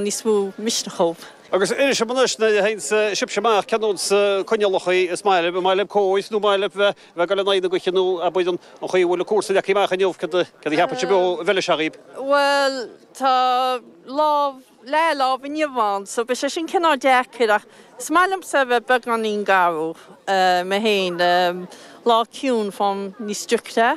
níos mó misniúil. Agus inis dom anois an bhfuil sibhse amach ceanúil ar coinníollacha an maith libh, maith libh cóir nó maith libh bheith bheith ag goil in aghaidh na gaoithe nó, bhuel, an an chaoi a bhfuil na cúrsaí leagtha amach inniu cad cad a cheapann sibh ó bheith le seachaíb? Bhuel tá lá breá inniu ann so beidh sé sin cineál deacair ach is maith liomsa a bheith beagáinín garbh mé féin lá ciúin fáim níos druicthe.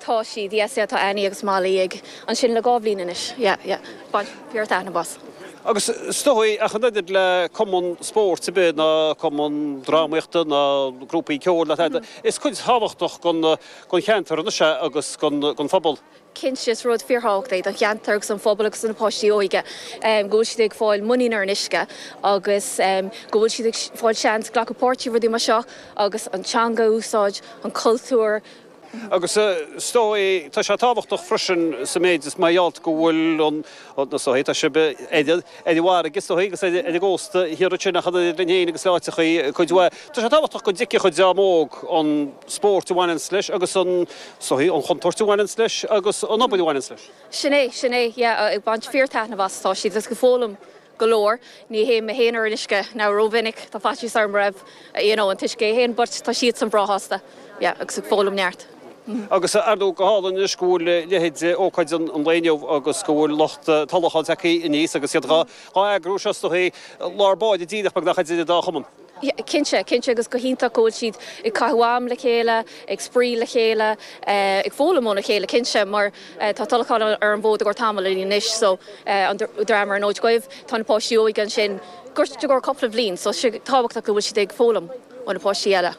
Tá siad, yeah, sea, tá Annie agus Molly ann, ansin le dhá bhliain anois, yeah, yeah, baint, bhí orthu aithne, bás. Agus is dóigh, ach an oiread le cumann spóirt ar bith, ná cumann drámaíochta, ná grúpaí ceoil, ná tada, is cuid thábhachtach den cheantar anois é agus den phobal. Cinnte, is rud fíorthábhachtach é don cheantar agus don phobal agus do na páistí óige go bhfuil siad ag fáil muinín ar an uisce agus go bhfuil siad ag fáil seans glacadh páirt i rudaí mar seo agus an teanga a úsáid, an cultúr. Agus is dóigh é, tá sé tábhachtach freisin sa méid is mar gheall go bhfuil an, is dóigh, tá sibh ar an bhfarraige is dóigh agus ar an gcósta thiar ansin ach eadrainn féin agus áiteachaí cuid mhaith, tá sé tábhachtach go dtuigfeadh an dream óg an spóirt a bhaineanns leis agus an, is dóigh, an chontúirt a bhaineanns leis agus an obair a bhaineanns leis. Sin é, sin é, yeah, ag baint fíor-taitneamh as atá siad agus ag foghlaim go leor. Ní théim mé féin ar an uisce, now, rómhinic. Tá faitíos orm roimh, you know, an t-uisce é féin, but tá siadsan breá shásta, yeah, agus ag foghlaim neart. Agus ar ndóigh go hálainn anois go bhfuil leithéid ócáid an lae inniu agus go bhfuil lucht Tulacháin tagtha aníos agus iad dhá eagrú. Seo is dóigh lár báire díreach, beagnach, idir an dá chumann. Cinnte, cinnte agus go hiontach go bhfuil siad ag caitheamh am le chéile, ag spraoi le chéile, ag foghlaim óna chéile cinnte mar tá Tulachán ar an bhfód i gcomhair tamaill anois so an dream ón Fhód Dubh, tá na páistí óige ansin díreach i gcomhair cúpla bhliain so tá sé tábhachtach go bhfuil siad ag foghlaim ó na páistí eile.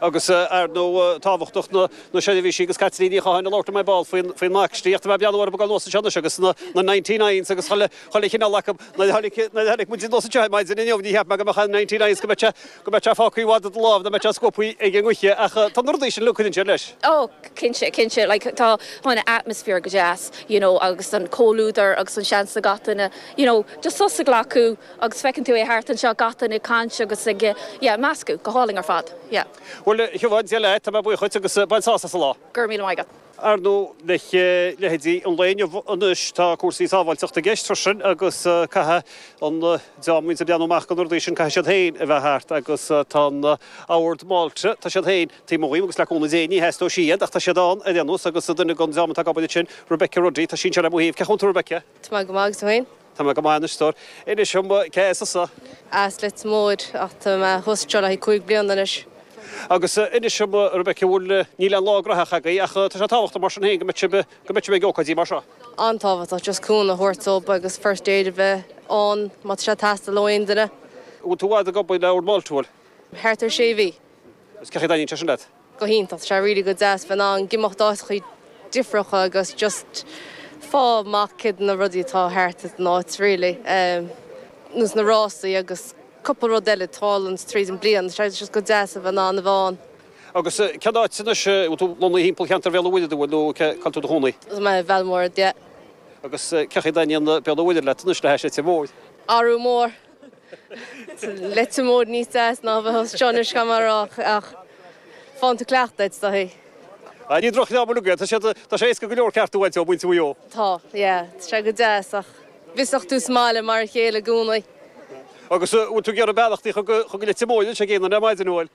Agus ar ndóigh tábhachtach na seirbhísí agus Caitlín Ní Chatháin ag labhairt ar ball faoin earcaíocht, mé ag breathnú orthu ag dul anuas anseo anois agus na ninety-nines agus Chuile chineál acu. Nuair a tháinig, nuair a tháinig muid anuas anseo maidin inniu, níor cheap mé go mbeadh an ninety-nine, go mbeadh sé, go mbeadh sé fágtha i bhfad i do lámh, nach mbeadh sé scuabtha ag an ngaoth, ach tá na rudaí sin ag cuidiú leis. Ó, cinnte, cinnte, like, tá, tá an atmosphere go deas, you know, agus an comhluadar agus an seans le gach duine, you know, just sos a ghlacadh agus feiceann tú é thart anseo, gach duine ag caint agus ag, yeah, meascadh go hálainn ar fad, yeah. Bhuel, Shiobhán, Dia leat, tá mé buíoch duit agus bain sásamh sa lá. Go raibh míle maith agat. Ar ndóigh, le leithéidí an lae inniu anois, tá cúrsaí sábháilteachta i gceist freisin agus caithfidh an dream a bhíonns ag breathnú amach do na rudaí sin, caithfidh siad féin a bheith thart agus tá an Ord Mhálta, tá siad féin taobh amuigh dhínn agus le cúnamh Dé ní theastóidh siad ach tá siad ann ar aon nós agus duine den dream atá ag obair ansin, Rebecca Ruddy, tá sise le mo thaobh. Cén chaoi a bhfuil tú, Rebecca? Tá mé go maith agus tú féin? Tá mé go maith anois, a stór. Inis dom, cé as tusa? As Leitir Móir, ach tá mé thuas anseo le cúig bliana anois. Agus inis dom, a Rebekka, an bhfuil, níl aon lá gnaitheach agaibh, ach tá sé tábhachtach mar sin féin go mbeadh sibh, go mbeadh sibh ag ócáidí mar seo? An-tábhachtach, just cúnamh a thabhairt dóibh agus first aid a bheith ann má tá sé ag teastáil ó aon duine. An bhfuil tú i bhfad ag obair le Ord Mhálta? Bhuel? Thart ar sé mhí. Agus cén chaoi a dtaitníonn sé sin leat? go hiontach. Tá sé really go deas bheith in ann imeacht go háiteachaí difreacha agus just fáil amach céard na rudaí atá thart ag an áit really. You know na rásaí agus cúpla rud eile tá ann tríd an bliain. Tá sé just go deas a bheith in ann a bheith ann. Agus cén áit anois a bhfuil tú lonnaithe thimpeall cheantar Bhéal an Mhuirthead a bhfuil nó cé tá tú i do chónaí? Tá mé i mBéal an Mhuirthead, yeah. Agus cé chaoi a dtaitníonn Béal an Mhuirthead leat anois le hais Leitir Móir? Ara bhuel, Leitir Móir níos deas ná a bheith os cionn uisce mar a rá ach faigheann tú cleachtadh air. Tá, ní drochdhream ar bith é. Tá sé, tá sé éasca go leor ceart a bhaint de mhuintir Mhaigh Eo. Tá, yeah, tá sé go deas ach b'fhearr leat sa mbaile mar a chéile i gcónaí. Agus an bhfuil tú ag iarraidh beannachtaí a chur chuig Leitir Móir, níl sé ag aon duine ar maidin amhail.